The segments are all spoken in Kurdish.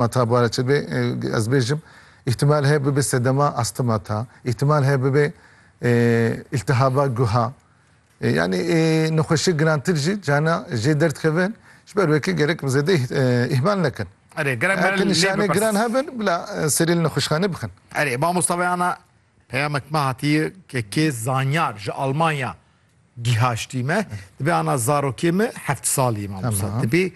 Mata bare çi be ez bêjim îhtimal heye bibe sedema astı mata, îhtimal heye bibe îltihaba guha. Yani nexweşiyê girantir jî cana jê derdkeve ji ber wê ke gerek bi zêde îhmal nekin. Erê gerek me lê bipirsin. Nişanê giran hebin bila serê li nexweşxane bixin. Erê mamosta veyana peyamek me hatiye ke kê zanyar ji Almanya gîhaştî me. Dibe ana zarokê me heft salî ye mamosta. Tibê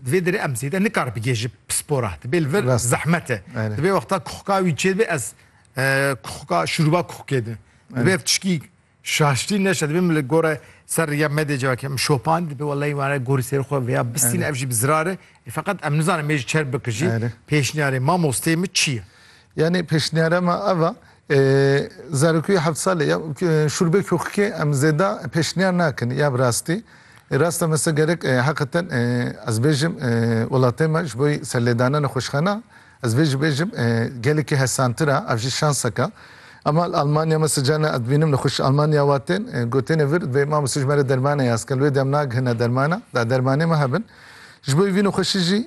Di vê derê em zêde nikare bigê ji pispor re. Dibê li vir zehmet e. Dibê wexta kuxka wî çêdibê ez kuxka şûrûba kuxkê din. Dibê ev tişkî şaştî neşe dibê min li gore ser rêya me dê civakê min şopandî dibê wellahî ware gorî ser xwe vêya bistîne ev jî bi zirar e. Feqet em nizanin me jî çer bikir jî pêşniyarê mamosteyê min çi ye. Yanî pêşniyara me ev e, zarokî heft salî ye û şûrbê kûxikê em zêde pêşniyar nakin ya bi rastî. Rast e mesela gerek heqeten ez bêjim welatê me ji bo serlêdana nexweşxana ez vê jî bêjim gelekî hesantir e ev jî şansek e. Ema li Almanya mesela carna ez dibînim nexweşî Almanya wa tên gotêne vir divê mamoste ji me re dermane yaz ke li wê de em nagihine dermana da dermanê me hebin. Ji bo vî nexweşî jî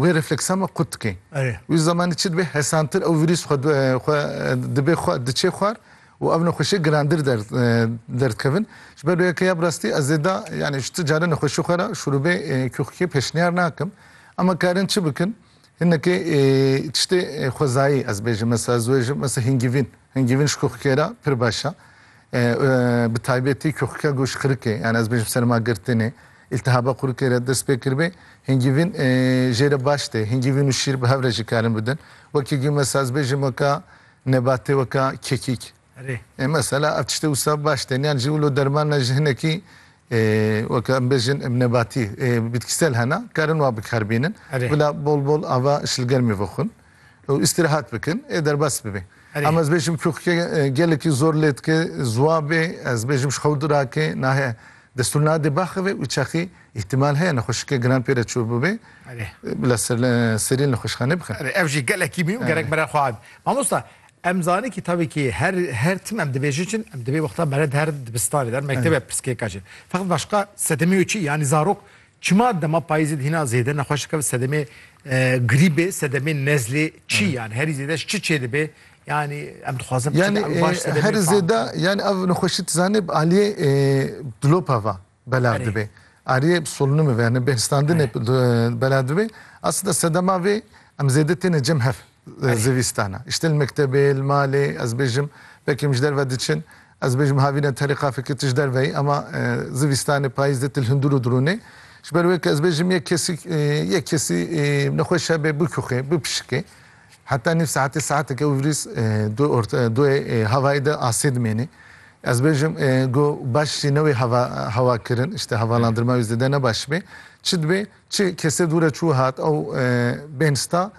Wê refleksama qut dike. Wî zemanî çi dibe hesantir ew vîrûs xwe xwe dibe xwe diçe xwar û ev nexweşiyê girandir der derdikevin. Ji ber weke ya bi rastî ez ê da yanî ji tu caran nexweşî xwe ra şurûbê kûxikê pêşniyar nakim. Em a karin çi bikin? Hinekê tiştê xwezayî ez bêjim mesela ez wêjim mesela hîngîvîn. Hingîvin ji kuxikê re pir beş e. Bi taybetî kuxike ku ji xirikê yan ez bêjim serma girtinê, îltihaba xurikê re dest pê kiribê, hingîvin jê re baş tê. Hingîvin û şîr bi hev re jî karin bidin. Wekî ku mesela ez bêjim weka nebatê weka kekîk. Erê. Mesela ev tiştê wisa baş tên. Yan jî wilo derman ne ji hinekî weka em bêjin nebatî, bitkîsel hene, karin wa bikar bînin. Bila bol bol ava ji li germê vexwin. û îstîrehat bikin ê derbas bibe. Em ez bêjim kûxke gelekî zor lê dike ziwabê ez bêjim ji xew dirake nahe destûr nade baxeve û çaxî îhtîmal heye nexweşike giran pê re çû bibe bila serî li nexweşxane bixin. Ev jî gelekî mî û gerek mere xwe abe. Mamosta em zanin kî tavê kî her her tim em dibêjin çin em dibê wexta mere di her dibistanê de mektebe pirsgirêka çin. Feqet başqa sedemê û çi yanî zarok Çima dema payîzê dihîna zêde nexweş dikeve sedemê grîbê, sedemê nezlê çi yani herî zêde ji çi çêdibe? Yani em dixwazin yani baş sedemê herî zêde yani ev nexweşî tu zanî bi aliyê dilopa ve belav dibe. Aliyê solunûmê ve yani bêhistandinê belav dibe. Aslinde sedema vê em zêde têne cem hev. Zivîstana işte li mektebê, li malê ez bêjim belkî em ji derve diçin, ez bêjim havîne terê qafekê tu ji derve yî ama zivîstanê payîz de tu li hundir û dirûnê. Ji ber wê ku ez bêjim yek kesî yek kesî nexweş hebe bikoxê, bipişikê. Heta nîv saetê saetek ew vîrîs du orta duê havayê de asê dimênê. Ez bêjim go baş jî ne wê heva hewa kirin işte hevalandirma wî zêde ne baş bê. Çi dibê çi kesê dûre çû hat ew bên sta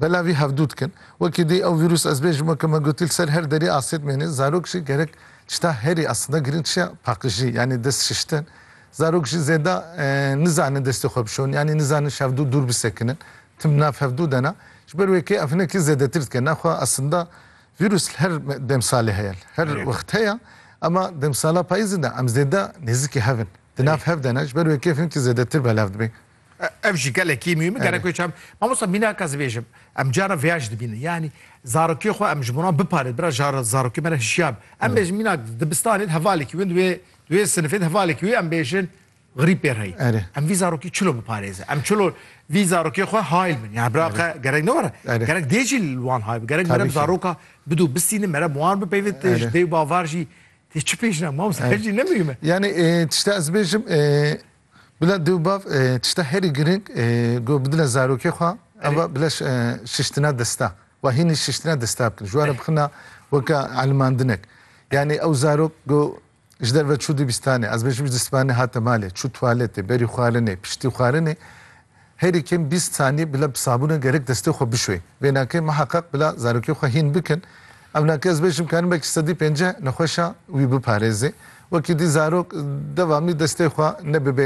Bela vî hevdu dikin. Wekî dî ew vîrûs ez bêjim weke me gotî li ser her derî asê dimêne. Zarok jî gerek tişta herî aslinde girîng çiya paqijî yanî dest şiştin. Zarok jî zêda nizanin destê xwe bişon yanî nizanin ji hevdu dûr bisekinin. Tim nav hevdu de ne. Ji ber wê kê ev hinekî zêdetir dike. Naxwe aslinde vîrûs li her demsalê heye li her wext heye ema demsala payîzê de em zêde nêzikî hev in. Di nav hev de ne. Ji ber wê kê ev hinkî zêdetir belav dibin. Ev jî gelekî mî min gerek çem. Mamosta mînaka zibêjim. Em cara vêya jî dibînin. Yanî zarokê xwe em ji miran biparêt. Bira jara zarokê me re hişyar. Em bêjin mînak dibistanê hevalekî win wê wê sinifê de hevalekî wê em bêjin grîb pê reyî. Em vî zarokî çilo biparêzin. Em çilo vî zarokê xwe hayl bin. Yani bira qe gerek ne were. Gerek dê jî li wan hayb. Gerek mere bi zaroka bidu bistînin mere bi wan bipeyvit ji dê û bavar jî tê çi pêjina mamosta ev jî ne mihîme. Yani tişta ez bêjim Bila dew bav tişta herî girîng ku bi dila zarokê xwe ew e bila şiştina desta û hînî şiştina desta bikin ji were bixina weke elimandinek yanî ew zarok ku ji derve çû dibistanê ez bêjim ji sibanê hate malê çû tuwaletê berî xwarinê piştî xwarinê Herî kêm bîst saniyê bila bi sabûnê gerek destê xwe bişuê. Vênakê miheqeq bila zarokê xwe hîn bikin. Ewnakê ez bêjim karin belkî sedî pênceh nexweşa wî biparêzê. Wekî dî zarok devamî destê xwe ne bibe